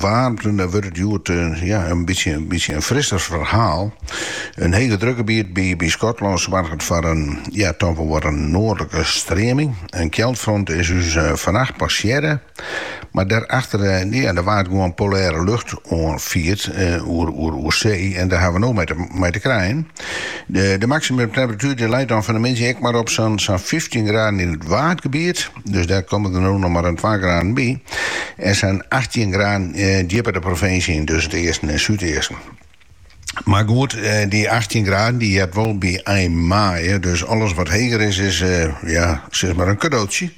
waarmte, dêr wurdt it hjoed ja, in bytsje bytsje in frisser ferhaal. In hege drukgebiet by by Skotlân soarget foar in ja, toch wol wat in noardlike streaming. In kjeldfront is ús fannacht passearre, mar dêrachter ja, dêr wurdt gewoan polêre lucht oanfierd oer oer oer see en dêr hawwe we no mei te mei te krijen. De de maksimumtemperatuer dy leit dan fan 'e middei ek mar op sa'n sa'n fyftjin graden yn it waadgebiet. Dus dêr komme der no noch mar in twa graden by. En sa'n achttjin graden djipper de provinsje yn, dus yn it easten en súdeasten. Mar goed, dy achttjin graden dy heart wol by ein maaie, dus alles wat heger is, is ja, sis mar in kadootsje.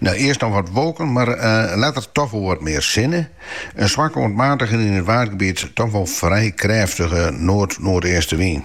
No, earst noch wat wolken, mar letter toch wol wat mear sinne. In swak oant matige en yn it Waadgebiet toch wol frij krêftige noard-noardeastewyn.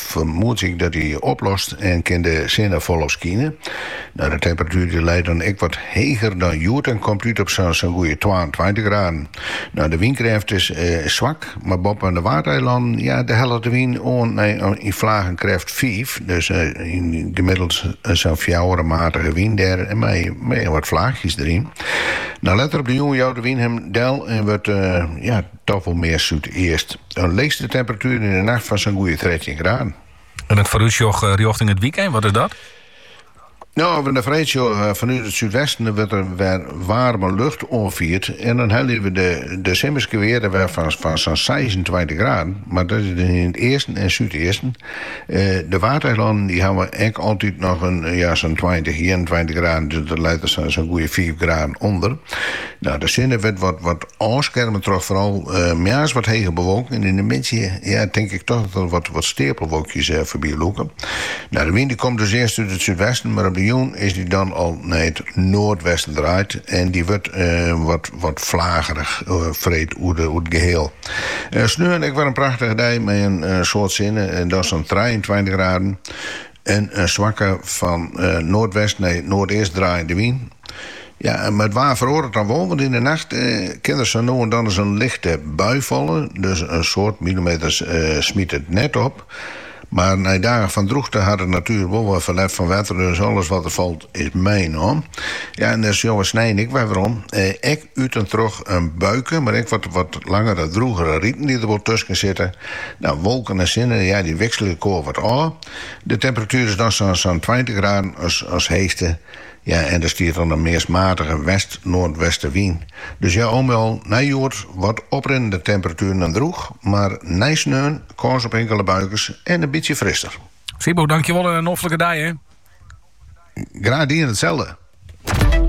fermoed ik dat die oplost en kin de sinne folop skine. Nou, de temperatuer die leit dan ek wat heger dan hjoed en komt út op sa'n sa'n goede twaentweintich graden. Nou, de wynkrêft is swak, mar boppe de Waadeilannen, ja, dêr hellet de wyn oan nei yn flagen krêft fiif, dus gemiddeld sa'n fjouwer, in matige wyn dêr mei wat flaachjes deryn. Nou, letter op de jûn jout de wyn him del en wurdt, ja, toch wol mear súdeast. In leechste temperatuer yn 'e nacht fan sa'n goede trettjin graden. En it foarútsjoch rjochting it wykein, wat is dat? No, as we nei freed sjogge, fanút it súdwesten wurdt der wer waarme lucht oanfierd en dan helje we de simmerske wearden wer fan fan sa'n seisentweintich graden, mar dat is dan yn it easten en súdeasten. De Waadeilannen dy hawwe ek altyd noch in ja sa'n tweintich, ienentweintich graden, dus dat leit der sa'n goede fiif graden ûnder. No, de sinne wurdt wat wat ôfskerme troch foaral moarns wat hege bewolking en yn de middei ja tink ik toch dat der wat steapelwolkjes foarby lûke. Nou de wyn dy komt dus earst út it súdwesten mar op de jûn is dy dan al nei it noardwesten draaid en dy wurdt wat wat flagerich freed oer it geheal. Sneon ek wer in prachtige dei mei in soad sinne, dat is dan trijeentweintich graden. En in swakke fan noardwest nei noardeast draaiende wyn. Ja, mar it waar feroaret dan wol, want yn de nacht kin der sa no en dan ris in lichte bui falle, dus in soad milimeters smyt it net op. Mar nei dagen fan drûchte hat de natuer wol wer ferlet fan wetter, dus alles wat der falt is meinommen. Ja, en dat sjogge we snein ek wer werom, ek út en troch in buike, mar ek wat langere, drûgere riten dy't der wol tusken sitte. No, wolken en sinne, ja, dy wikselje elkoar wat ôf. De temperatuer is dan sa'n tweintich graden as heechste. Ja, en der stiet dan in meast matige west-noardwestewyn. Dus ja, al mei al nei hjoed wat oprinnende temperatueren en drûch, mar nei sneon kâns op inkele buikens en in bytsje frister. Sybo, dankjewol en in noflike dei hè. Graach dien, itselde.